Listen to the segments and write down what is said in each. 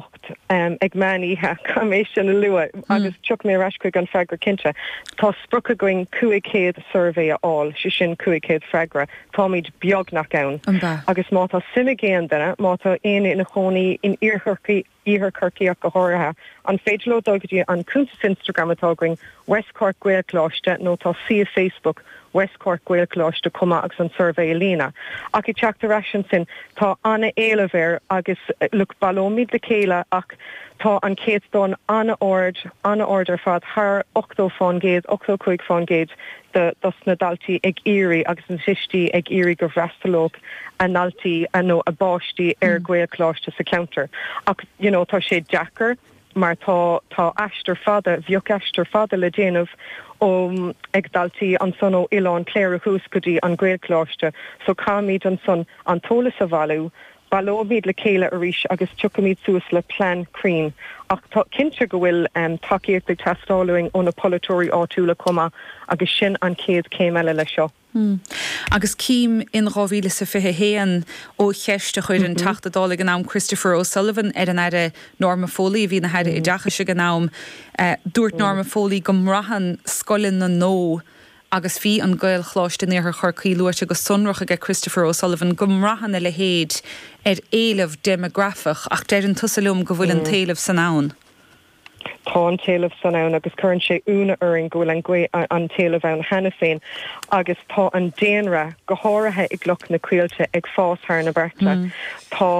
8:00 ag meán oíche, caithfidh mé sin a lua agus tiocfaidh mé ar ais chuig an bhfreagra cinnte. Tá sprioc againn 500 suirbhé a fháil, sé sin 500 freagra, táimid beagnach ann. Agus má tá suim ag éinne, má tá éinne ina chónaí in Iarthar Chorcaí ach go háirithe, an féidir leo dul go dtí an cuntas Instagram atá againn, West Cork Gaelcholáiste, nó tá suíomh Facebook West Cork Gaelcholáiste chomh maith agus an suirbhé a líonadh. Ach ag teacht ar ais ansin, tá an-éileamh air agus look, baileoimid le chéile ach tá an céatadán an-ard, an-ard ar fad, thar ochtó faoin gcéad, ochtó a cúig faoin gcéad de, dos na daltaí ag iarraidh agus na tuistí ag iarraidh go bhfreastalódh a ndaltaí nó a bpáistí ar Ghaelcholáiste sa cheantar. Ach, you know, tá sé deacair. mar tá tá aistear fada, bheadh aistear fada le déanamh ó ag daltaí ansan ó Oileán Cléire suas go dtí an Gaelcholáiste, so caithfimid ansan an t-eolas a bhailiú, baileoimid le chéile arís agus tiocfaimid suas le plean cruinn. Ach tá cinnte go bhfuil tacaíocht ag teastáil uainn ó na polaiteoirí áitiúla chomh maith agus sin an chéad chéim eile leis seo. Hmm. Agus cím in dhá mhíle 's a fiche haon ó cheist a chuir an Teachta Dála ag an am, Christopher O'Sullivan, ar an Aire Norma Foley, a bhí ina hAire Oideachais ag an am, dúirt Norma Foley go mbraitheann scoileanna nó agus bhí an Gaelcholáiste in Iarthar Chorcaí luaite go sonrach aige Christopher O'Sullivan go mbraitheann a leithéid ar éileamh deimeagrafach ach deireann tusa liom go bhfuil an t-éileamh san ann. Tá an t-éileamh san ann agus cuireann sé ionadh orainn go bhfuil an, go, an t-éileamh ann cheana féin agus tá an daonra, go háirithe i gCloch na Caoilte, ag fás thar na bearta. Tá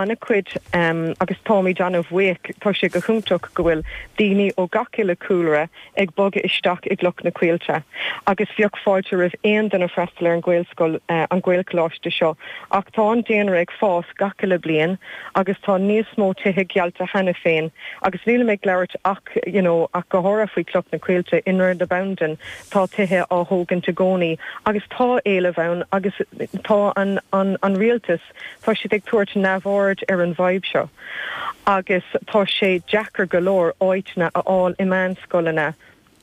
an-chuid agus táimid an-bhuíoch, tá sé go hiontach go bhfuil daoine ó gach uile chúlra ag bogadh isteach i gCloch na Caoilte agus bheadh fáilte roimh aon duine freastal ar an Ghaelscoil, an Gaelcholáiste seo ach tá an daonra ag fás gach uile bliain agus tá níos mó tithe geallta cheana féin agus nílim ag labhairt ach, you know, ach go háirithe faoi Chloch na Caoilte, i nDroichead na Bandan tá tithe á thógaint i gcónaí agus tá éileamh ann agus tá an, an, an Rialtas. Ach, tá siad ag tabhairt neamhaird ar an bhfadhb seo agus tá sé deacair go leor áíteanna a fháil i meánscoileanna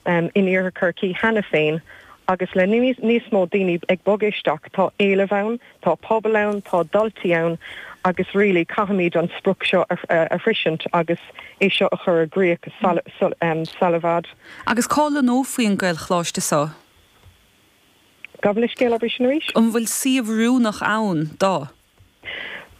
in Iarthar Chorcaí cheana féin agus le níos mó daoine ag bogadh isteach tá éileamh ann, tá pobal ann, tá daltaí ann agus really caithfimid an sprioc seo a shroisint agus é seo a chur i gcríoch sula i bhfad. Agus cá lonnófaí an Gaelcholáiste seo? Gabh mo leithscéal, abair sin arís. An bhfuil suíomh oiriúnach ann dó.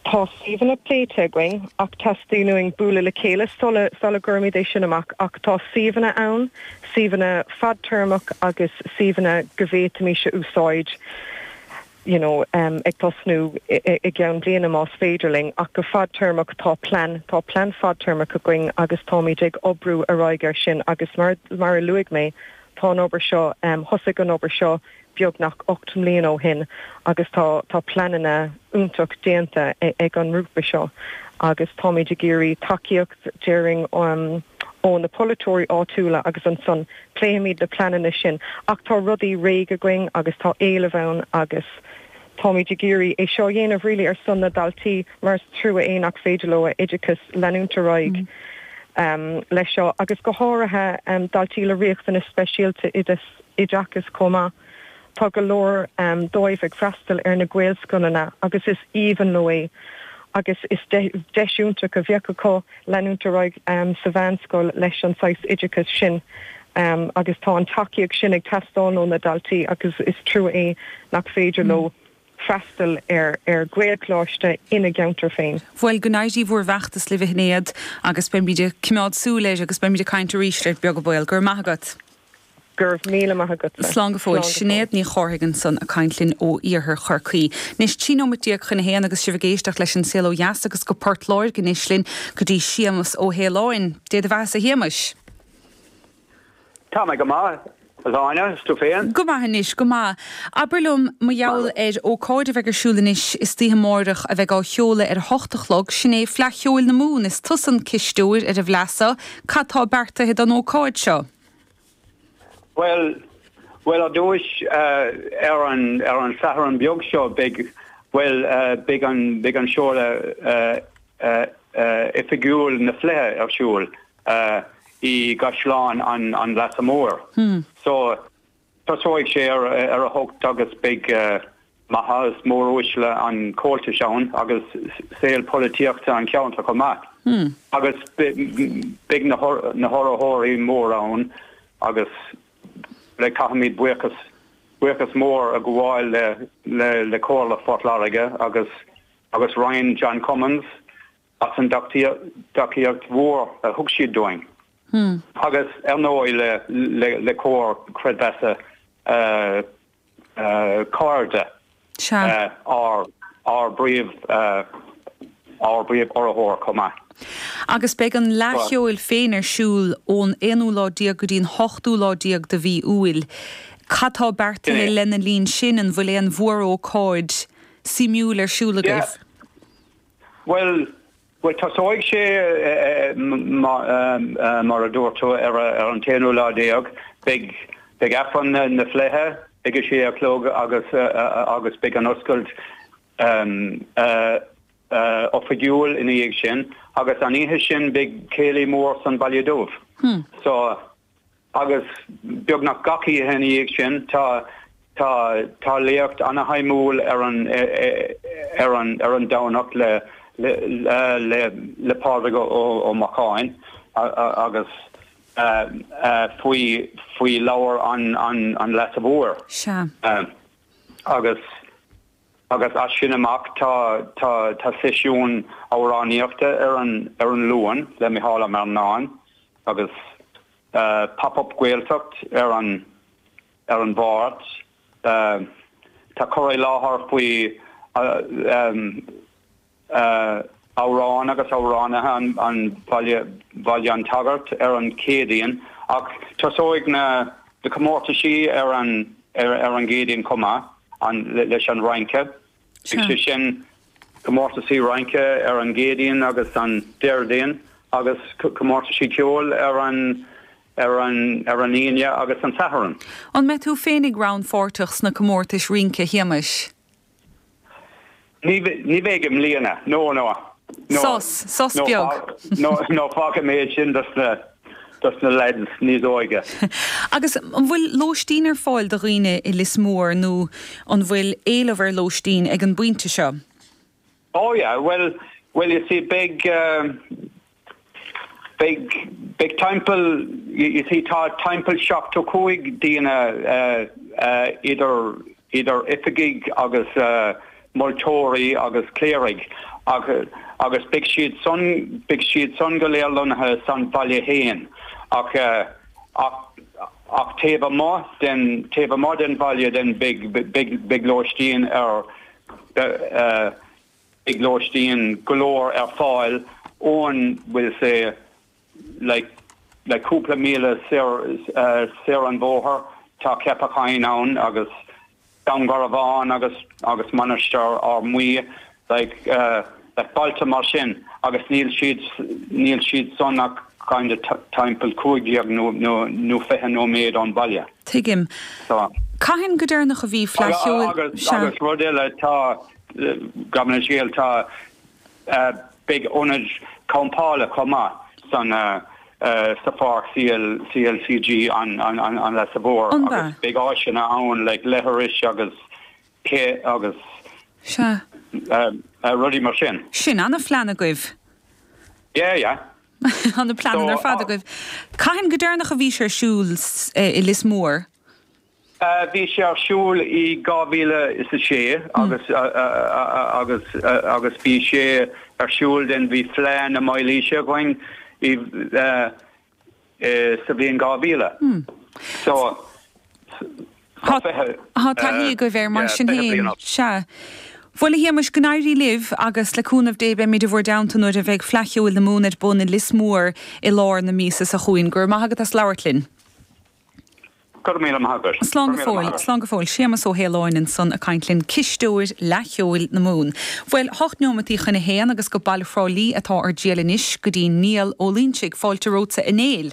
Tá suíomhanna pléite againn ach teastaíonn uainn bualadh le chéile sula sula gcuirfimid é sin amach ach tá suíomhanna ann, suíomhanna fadtéarmach agus suíomhanna go bhféadfaimis a úsáid you know ag tosnú i gceann bliana más féidir linn ach go fadtéarmach tá plean, tá plean fadtéarmach againn agus táimid ag oibriú ar aghaidh air sin agus mar mar a luaigh mé, Tá an obair seo, thosaigh an obair seo beagnach ocht mbliana ó shin agus tá pleananna iontach déanta ag an ngrúpa seo agus táimid ag iarraidh tacaíocht dáiríre ó na polaiteoirí áitiúla agus ansan pléifimid na pleananna sin ach tá rudaí réidh againn agus tá éileamh ann agus Táimid ag iarraidh é seo a dhéanamh really ar son na daltaí mar is trua é nach féidir leo a oideachas leanúint ar aghaidh leis seo agus go háirithe daltaí le riachtanais speisialta oideachais chomh maith. Tá go leor díobh ag freastal ar na Gaelscoileanna agus is aoibhinn leo é agus is deis iontach a bheadh acu leanúint ar aghaidh sa mheánscoil leis an saghas oideachais sin agus tá an tacaíocht sin ag teastáil ó na daltaí agus is trua é nach féidir leo freastal ar Ghaelcholáiste ina gceantar féin. Bhuel, go n-éirí bhur bhfeachtas libh a Shinéad agus beimid ag coimeád súil air agus beimid ag caint arís leat beag an baol. Go raibh maith agat. Go raibh míle maith agatsa. Slán go fóill. Sinéad Ní Chárthaigh ansan a' caint linn ó iarthar Chorcaí. Anois, trí nóimeat déag chun a haon agus sibh ag éisteacht leis An Saol Ó Dheas agus go Port Láirge anois linn go dtí Séamas Ó hAoláin. Dé do bheathasa a Shéamais. Tá mé go maith, a Áine, 's tú féin? Go maith anois, go maith. Abair liom, mar gheall ar ócáid a bheidh ar siúl anois istoíche amáireach a bheidh á sheoladh ar a hocht a chlog, sin é Fleadh Cheoil na Mumhan, is tusa an cisteoir ar an bhFleadh so, cad tá beartaithe don ócáid seo? Bhuel, bhuel, ar dtúis, ar an, ar an Satharn beag seo, beidh, bhuel, beidh an, beidh an seoladh oifigiúil na Fleidhe ar siúl i gCaisleán an, an Leasa Mhóir. So. Tosóidh sé ar a hocht agus beidh maithe is móruaisle an Chomhaltais ann agus saol polaitíochta an cheantair chomh maith. Agus beidh na hurraitheoirí móra ann agus le caithfimid buíochas, buíochas mór a ghabháil le Comhairle Phort Láirge agus agus Roinn John Cummins as an dtacaíocht mhór a thug siad dúinn agus ar ndóigh le Comhar Creidmheasa Cairde, ár bpríomh-urraitheoir chomh maith. Agus beidh an Fhleadh Cheoil féin ar siúl ón aonú lá déag go dtí an hochtú lá déag de mhí Iúil. Cad tá beartaithe lena linn sin? An bhfuil aon mhórócáid suimiúil ar siúl agaibh? Bhuel, tosóidh sé, mar a dúirt tú, ar an t-aonú lá déag. Beidh Aifreann na Fleidhe ag a sé a chlog agus beidh an oscailt oifigiúil ina dhiaidh sin. Agus an oíche sin beidh céilí mór san Bhaile Dubh. Agus beagnach gach oíche ina dhiaidh sin tá léacht ana-shuimiúil ar an Domhnach le Pádraig Ó Macháin agus faoi Leabhar an Leasa Mhóir. Sea. Agus. agus as sin amach tá seisiún amhránaíochta ar an Luan le Micheál Marrinan agus Pop Up Gaeltacht ar an Mháirt. Tá cur i láthair faoi. amhráin agus amhránaithe an Bhaile an tSagairt ar an Chéadaoin ach tosóidh na comórtaisí ar an gCéadaoin chomh maith leis an rince, beidh sé sin, comórtaisí rince, ar an gCéadaoin agus an Déardaoin agus comórtaisí ceoil ar an Aoine agus an Satharn. An mbeidh tú féin ag rannpháirteach sna comórtais rince, a Shéamais? Ní bheidh i mbliana. No, no, no. Sos, sos beag. No, no, fágfaidh mé sin dos na, dos na lads níos óige. Agus an bhfuil lóistín ar fáil do dhaoine i Lios Mór nó an bhfuil éileamh ar lóistín ag an bpointe seo? Oh yeah, bhuel, bhuel, you see, beidh, eh, Beidh, beidh timpeall, you see, tá timpeall seachtó cúig daoine idir, idir oifigigh agus moltóirí agus cléirigh ach, agus beidh siad san, beidh siad san go léir lonnaithe san bhaile fhéin ach, ach, ach taobh amuigh den, taobh amuigh den bhaile then beidh, beidh, beidh lóistín ar, lóistín go leor ar fáil óir níl sé like like cúpla míle soir soir an bhóthair tá Ceapach Choinn ann agus Dún Garbhán agus agus Mainistir Fhear Maí like like bailte mar sin agus níl siad níl siad san ach kind of timpeall cúig déag nó nó nó fiche nóiméad ón bhaile. Tuigim. So. Cathain go deireanach a bhí Fleadh Cheoil? Agus agus rud eile tá Gabh mo leithscéal Tá beidh ionad campála chomh maith san sa pháirc CLCG an Leasa Mhóir agus beidh áiseanna ann le leithreas agus cé agus Sea. rudaí mar sin. Sin an plean agaibh. Yeah yeah. Ana-phlean ar fad agaibh. Cathain go deireanach a bhí sé ar siúl i Lios Mór? Bhí sé ar siúl i 2006 agus bhí sé ar siúl den bhí Fleadh na Mílaoise againn sa bhliain 2000. So, tá taithí agaibh air mar sin féin. Sea. Bhuel, a Shéamais, go n-éirí libh agus le cúnamh Dé beimid i bhur dteannta nuair a bheidh Fleadh Cheoil na Mumhan ar bun i Lios Mór i lár na míosa seo chugainn. Go raibh maith agat as labhairt linn. Go raibh míle maith agat. Slán go fóill, slán go fóill. Séamas Ó Faoláin ansan ag caint linn, Cisteoir Fhleadh Cheoil na Mumhan. Bhuel, hocht neomataí chun a haon agus go Baile Thrá Lí atá ár dtriail anois go dtí Niall Ó Loinsigh. Fáilte romhatsa a Néill.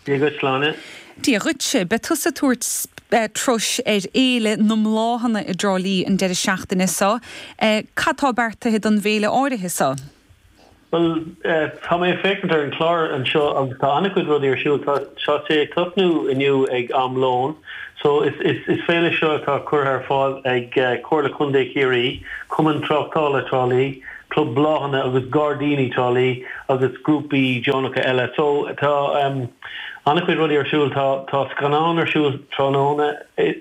Dia dhuit, Sláine. Dia dhuitse. Beidh tusa ag tabhairt turais ar Fhéile na mBláthanna i dTrá Lí an deireadh seachtaine so. Cad tá beartaithe don bhféile áirithe so? Bhuel, tá mé ag féachaint ar an chlár anseo agus tá an-chuid rudaí ar siúl. Tá sé ag tosnú inniu ag am lóin. So, is féile seo atá curtha ar fáil ag Comhairle Contae Chiarraí, Cumann Tráchtála Trá Lí, Club Bláthanna agus Gairdíní Trá Lí agus grúpaí deonacha eile. So, tá an-chuid rudaí ar siúl. Tá scannán ar siúl tráthnóna. ii,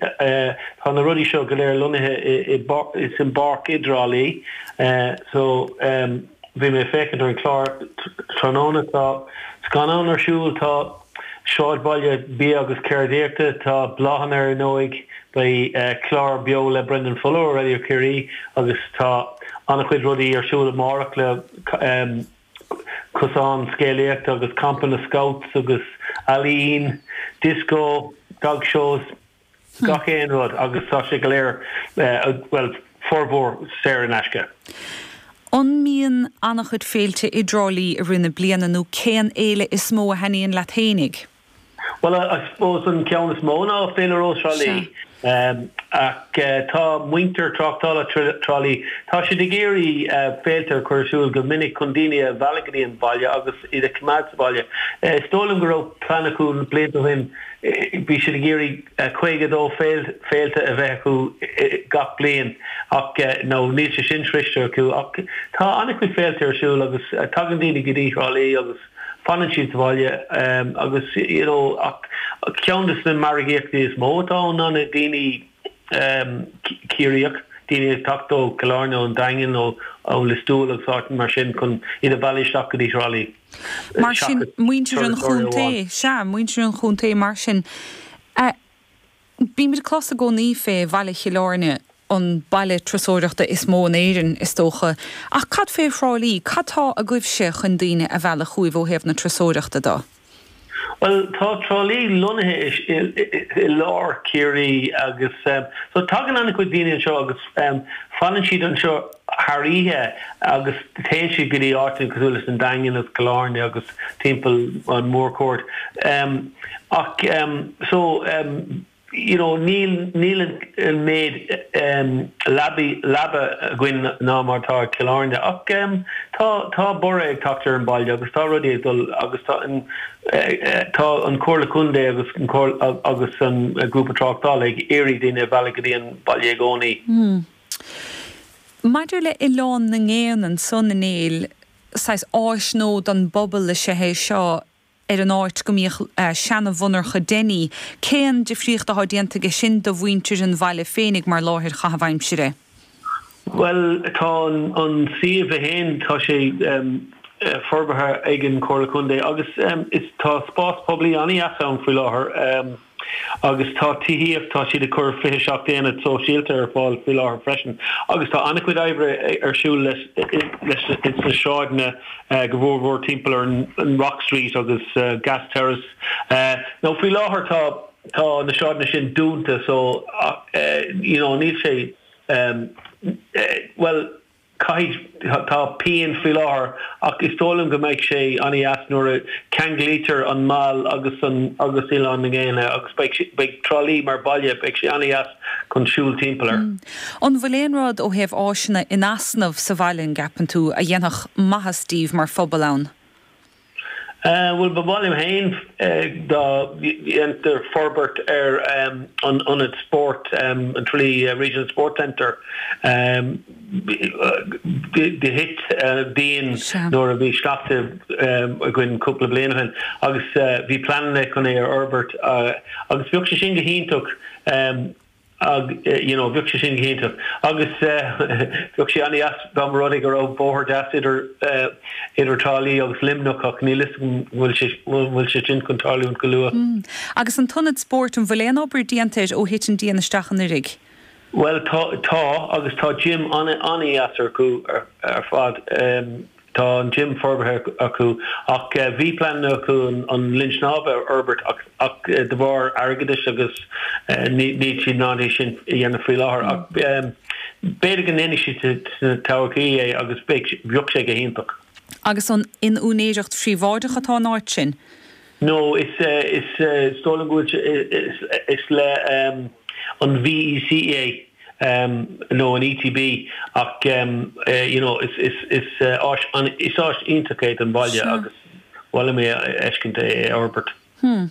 Tá na rudaí seo go léir lonnaithe sa pháirc i dTrá Lí, so bhí mé ag féachaint ar an chlár tráthnóna, tá scannán ar siúl, tá sráidbhaile bia agus ceardaíochta, tá bláthanna ar ndóigh, beidh clár beo le Brendan Fuller ó Radio Ciarraí agus tá an-chuid rudaí ar siúl amárach le. cosán scéalaíochta agus campa na Scouts agus ealaín, disco, dog shows, gach aon rud agus tá sé go léir, bhuel, formhór, saor in aisce. An mbíonn an-chuid féilte i dTrá Lí i rith na bliana nó cén fhéile is mó a thaitníonn leat fhéinig? Bhuel, I suppose an ceann is mó ná Féile Rós Thrá Lí. Ach tá muintir Tráchtála Thrá Lí, tá siad ag iarraidh féilte a chur ar siúl go minic chun daoine a mhealladh go dtí an baile agus iad a choimeád sa bhaile. Is dóigh liom go raibh plean acu na blianta ó shin, bhí siad ag iarraidh 52 féile a bheith acu gach bliain ach no, níl sé sin sroichte acu ach tá an-chuid féilte ar siúl agus tagann daoine go dtí Thrá Lí agus Fanann siad sa bhaile agus ceann de na margaíochtaí is mó atá ann ná na daoine Ciarraíoch, daoine ag teacht ó Chill Airne, ón Daingean, ó Lios Tuathail agus áiteanna mar sin chun iad a mhealladh isteach go dtí Trá Lí. Mar sin, muintir an chontae, sea, muintir an chontae mar sin, a Bímid ag clos i gcónaí fé Bhaile Chill Airne, an baile turasóireachta is mó in Éirinn, is dócha, ach cad fé Thrá Lí? Cad tá agaibhse chun daoine a mhealladh chugaibh ó thaobh na turasóireachta de? Bhuel, tá Trá Lí lonnaithe i lár Chiarraí agus so tagann an-chuid daoine anseo agus fanann siad anseo. thar oíche agus téann siad go dtí áiteanna cosúil leis an Daingean agus Cill Airne agus timpeall an Mhórchuaird ach so you know níl níl an méid lea leaba againn ná mar atá ag Cill Airne ach tá tá borradh ag teacht ar an baile agus tá rudaí ag dul agus tá an tá an Comhairle Contae agus an Comhairle agus an grúpa tráchtála ag iarraidh daoine a mhealladh go dtí an baile i gcónaí. Maidir le Oileán na nGéanna ansan a Néill, saghas áis nua don bpobal is ea é seo ar an áit go mbíodh seana-mhonarcha Denny. Cén difríocht athá déanta aige sin do mhuintir an bhaile féinig mar láthair chaitheamh aimsire? Bhuel tá an suíomh é féin, tá sé forbartha ag an Chomhairle Contae agus tá spás poiblí an-dheas ann faoi láthair. Agus tá tithíocht, tá siad ag cur 27 aonad sóisialta ar fáil faoi láthair freisin. Agus tá an-chuid oibre ar siúl leis sna sráideanna go mór mór timpeall ar an Rock Street agus Gas Terrace. Now faoi láthair tá tá na sráideanna sin dúnta so you know níl sé eh bhuel Caithfidh, tá pian faoi láthair ach is dóigh liom go mbeidh sé an-deas nuair a cheanglaítear an Mall agus an agus Oileán na nGéanna agus beidh sé, beidh Trá Lí mar baile, beidh sé an-deas chun siúl timpeall air. An bhfuil aon rud ó thaobh áiseanna in easnamh sa bhaile, an gceapann tú, a dhéanfadh maitheas daoibh mar phobal ann? Bhuel, ba mhaith liom féin dá ndéantar forbairt ar an ionad spóirt, an Tralee Regional Sports Centre. Do thit díon nuair a bhí sneachta againn cúpla bliain ó shin agus bhí pleananna chun é a fhorbairt agus bheadh sé sin go hiontach. ag, you know, bheadh sé sin go hiontach agus bheadh sé an-deas dá mba rud é go raibh bóthar deas idir, idir Trá Lí agus Luimneach ach níl 'fhios agam an bhfuil sé, an bhfuil sé sin chun tarlúint go luath. Mm, agus an t-ionad spóirt, an bhfuil aon obair déanta air ó thit an díon isteach anuiridh? Bhuel tá, tá agus tá gym an-deas acu ar fad. Tá an gym forbartha acu ach bhí pleananna acu an linn snámha a fhorbairt ach de bharr airgeadais agus níl siad in ann é sin a dhéanamh faoi láthair ach b'fhéidir go ndéanfaidh siad sa todhchaí é agus bheadh sé go hiontach. Agus an in úinéireacht phríobháideach atá an áit sin? No, is is is dóigh liom go bhfuil sé is is le an VEC é nó an ETB ach you know is is is áis is áis iontach é don bhaile agus ba mhaith liom é a fheiscint é a fhorbairt. Hmm.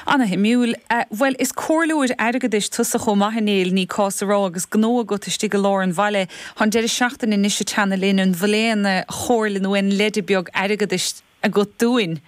Ana-shuimiúil. Bhuel, is comhairleoir airgeadais tusa chomh maith, a Néill, ní cás a rá, agus gnó agat istigh i lár an bhaile. Tá an deireadh seachtaine anois ag teannadh linn, an bhfuil aon chomhairle nó aon leide beag airgeadais agat dúinn?